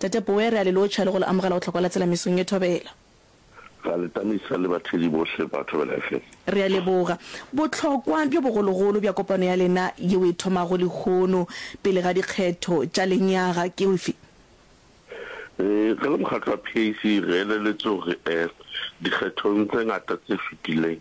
Tate Boe, re a le lotšha le go le amogela go tlhokwela tsela mesong ye thobela. Ra le tamisa le bathedi bohle ba Thobela FM. Re a leboga bohlokwa bjo bogologolo bja kopano ya lena yeo e thomago lehono pele ga dikgetho tša lenyaga. Ke efe? Re le Mokgatlo wa PAC re eleletše gore dikgethong tse ngata tse fetileng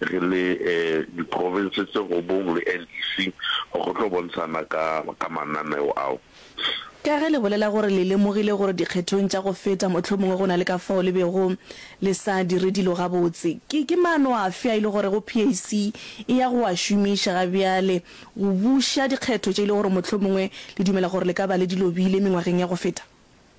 re le di province tse robong le NEC gore go tlo bontshana ka ka mananeo ao. Ka ge le bolela gore le lemogile gore dikgethong tša go feta mohlomongwe go na le ka fao le bego le sa dire dilo gabotse, ke ke maano afe a e le gore go PAC e ya go a šomiša ga bjale go buša dikgetho tše e le gore mohlomongwe le dumela gore le ka ba le di lobile mengwageng ya go feta?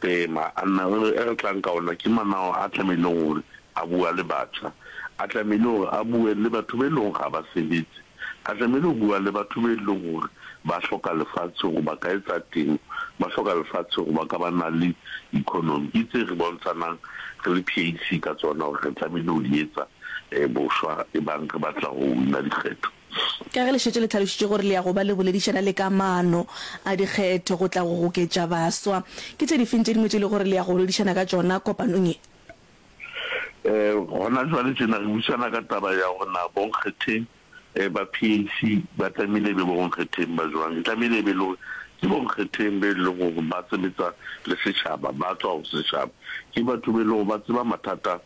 Tema, a nna re re, e re tlang ka ona ke manao a tlamehileng gore a bua le batjha, a tlamehile gore a bue le batho be leng gore ga ba sebetse, a tlamehile go bua le batho be leng gore ba hloka lefatshe gore ba ka etsa temo, ba hloka lefatshe gore ba ka ba na le economy. Ke tse re bontshanang re le PAC ka tsona gore re tlamehile go di etsa bošwa ebang re batla go win-a dikgetho. Ka ge le šetše le tlhalošitše gore le ya go ba le boledišana le ka maano a dikgetho go tla go goketša baswa, ke tše difeng tše dingwe tše e lego gore le ya go boledišana ka tšona kopanong ye? Gona jwale tjena re buisana ka taba ya gore na bonkgetheng ba PAC ba tlamehile e be bonkgetheng ba jwang. E tlamehile e be e le gore ke bonkgetheng be e leng gore ba sebetsa le setšhaba, ba tswa go setšhaba, ke batho be e leng gore ba tseba mathata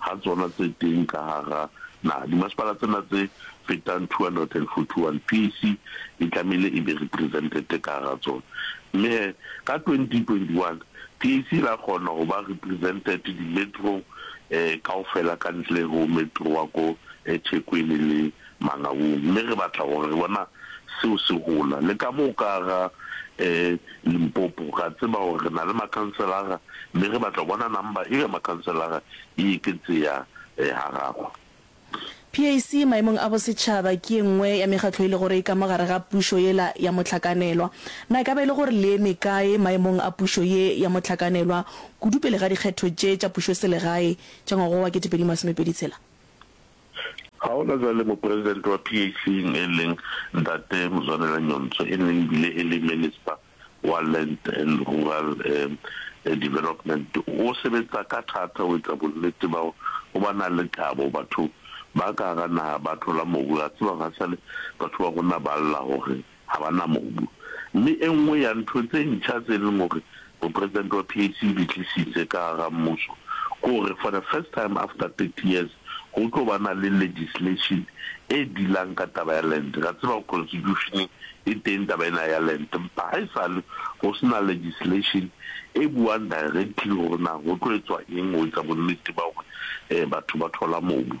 ga tsona tse teng ka gagá naga. Dimasepala tsena tse fetang 241 piece e tlamehile e be represented ka gagá tsona. Mme he, ka 2021 PAC la kgona go ba represented di-metro-ng kaofela ka ntle ho metro wa ko Ethekwini le Mangabung, mme re batla gore re bona seo se gola. Le ka mo ka ga Limpopo, re a tseba gore re na le makhanselara, mme re batla go bona number eo ya makhanselara e eketseha ha gago. PAC maemong a bosetšhaba ke ye nngwe ya mekgatlo e le gore e ka mo gare ga pušo yela ya mohlakanelwa. Na e ka ba e le gore le eme kae maemong a pušo ye ya mohlakanelwa kudu pele ga dikgetho tše tša pušoselegae tša ngwaga wa wa kete pedi masomepedi tshela? Ga gona jwale mopresidente wa PAC eng e leng Ntate Muzwanela Nyonso e neng ebile e le Minista wa Land and Rural Development o sebetsa ka thata go etsa bonnete ba gore go ba na le kabo. Batho ba ka hara naha ba thola mobu, re a tseba hore ha e sale batho ba rona ba lla gore ga ba na mobu. Mme e nngwe ya ntho tse ntšha tse e leng gore Mopresidente wa PAC o di tlisitse ka gara mmuso ke gore for the first time after thirty years go tlo ba na le legislation e dealang ka taba ya land. Re a tseba gore Constitution-eng e teng taba ena ya land empa ga e sale go se na legislation e buang directly gore na go tlo etswa eng go etsa bonnete ba gore batho ba thola mobu.